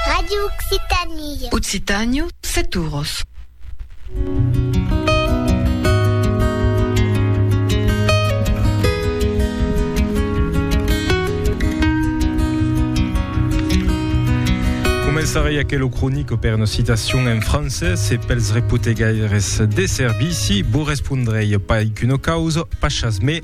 Radio Occitanie. Occitània, set uros. Començaré aquel cronic per una citacion en francés e pels repotegaires de servici, vos respondrei pas qu'una causa, pas chasmé,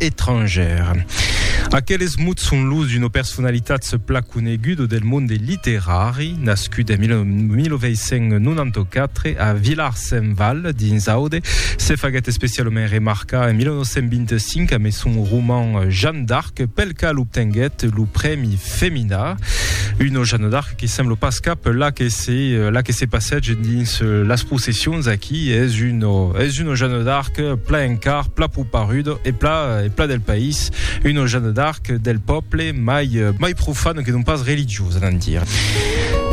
etrangèr. Aqueles mots son los d'una personalitat se pla coneguda del monde literari, nascut en 1994 a Villars-Saint-Val, dins Aude, se faguèt especialament remarcar en 1925 amé son roman Jeanne d'Arc, pel qual obtenguèt lo prèmi Femina. Una Jeanne d'Arc que sembla pas cap la que se la que se passège dins euh, las processions aquí es un es une Jeanne d'Arc pla encar pla pouparudo e pla e pla del país une Jeanne d'Arc del peuple mai euh, mai profane que non pas religiosa d'en dire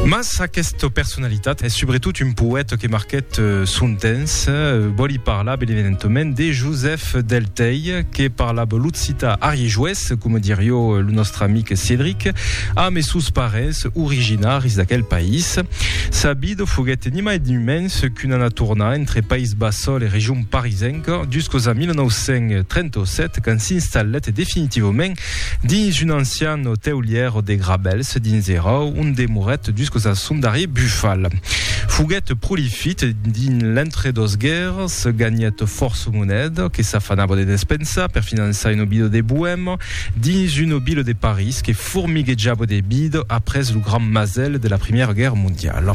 Mas aquesta personalitat es sobretot un poète que marquèt euh, son temps. Euh, vòli parlar ben evidentament de Joseph Delteil, que parlava l'occità ariejoès coma dirió lo nòstre amic Cédric, amb es sòus parents originaris d'aquel país. Sa vida foguèt ni mai ni mens qu'una anar tornar entre País Bassol e region parisenca juscos a 1937 quand s'installèt definitivament dins un ancian oteulièr de Grabèls dins era ont demorèt juscos a son darrier bufal. Foguèt prolifit dins l'entre dos guèrras, ganhèt fòrça moneda que s'afanava de despensar, França per finançar un obido de Boèma dins un obido de París que formiguejava de bido après lo grand masèl de la Primièra Guèrra Mondiala.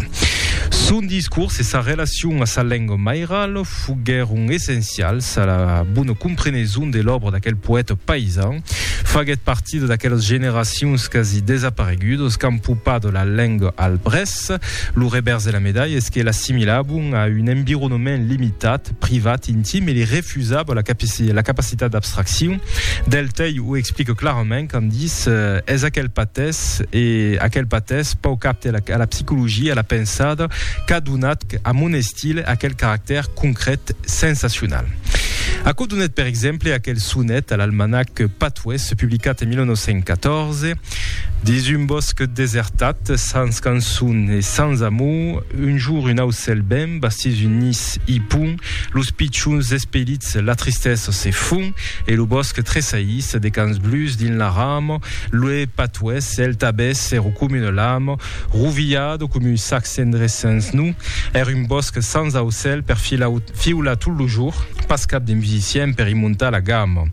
Son discors e sa relacion a sa lenga mairala foguèron essencials a la bona compreneson de l'òbra d'aquel poèta paisan. Faguèt partida d'aquelas generacions quasi desaparegudas qu'an popat la lenga al brèç. Mas, lo revèrs de la medalha es que l'assimilavan a un environament limitat, privat, intim e li refusava la capacitat d'abstraccion. Del Tei o explique clarament quand dis Es aquel patès e aquel patès pauc apte a la psicologia, a la pensada, qu'a donat a mon estil aquel caractèr concret, sensacional. Aquò donèt per exemple aquel sonet a l'almanac Patois publicat en 1914, Dins un bòsc desertat, sens cançon e sens amor, un jour un aucèl ben bastís un nis i pon los pichons despelits, la tristesa se fon e lo bòsc tresaís de cans blus dins la rama, l'ue patuès, el tabès se recomina l'ama, Rovilhado com un sac cendrés sens nu er un bòsc sans aucèl per fiular tot lo jour, pas cap de musicien per i montar la gamma.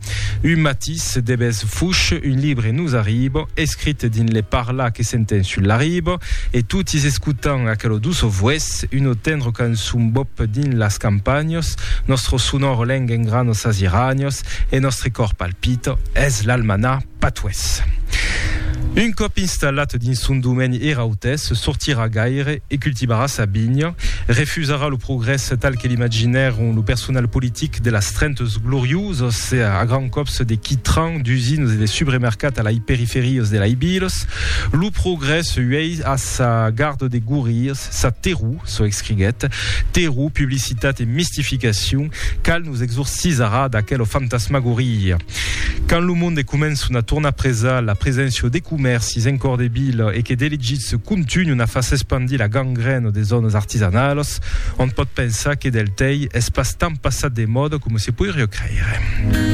Un matís de bes fuch un libre nos arriba, escrit dins le parlar que s'enten sul la riba, e totis escotan aquelo doço vues, uno tendro cançon bop dins las campagnas, nostro sonor leng engrana sas iranias e nostre còr palpita. Pito es l'almanà patués. Un còp installat dins son domeni er autès sortirà gaire e cultivarà sa vinha, refusarà lo progrès tal que l'imaginèron lo personal politic de las Trentes Gloriuses a grands còps de quitran, d'usinas e de subremercat a lai periferias de lai vilas. Lo progrès uèi a sa garda de gorrias, sa terror Çò escriguèt, Terror, publicitat e mistificacion, cal nos exorcisarà d'aquela fantasmagoria. Quand lo monde començon a tornar presal, la preséncia de comèrcis en còr de vila e que d'elegits contunhon a far s'espandir la gangrèna de zònas artisanalas, ont pòt pensar que del tei es pas tant passat de mòda coma se poiriá creire.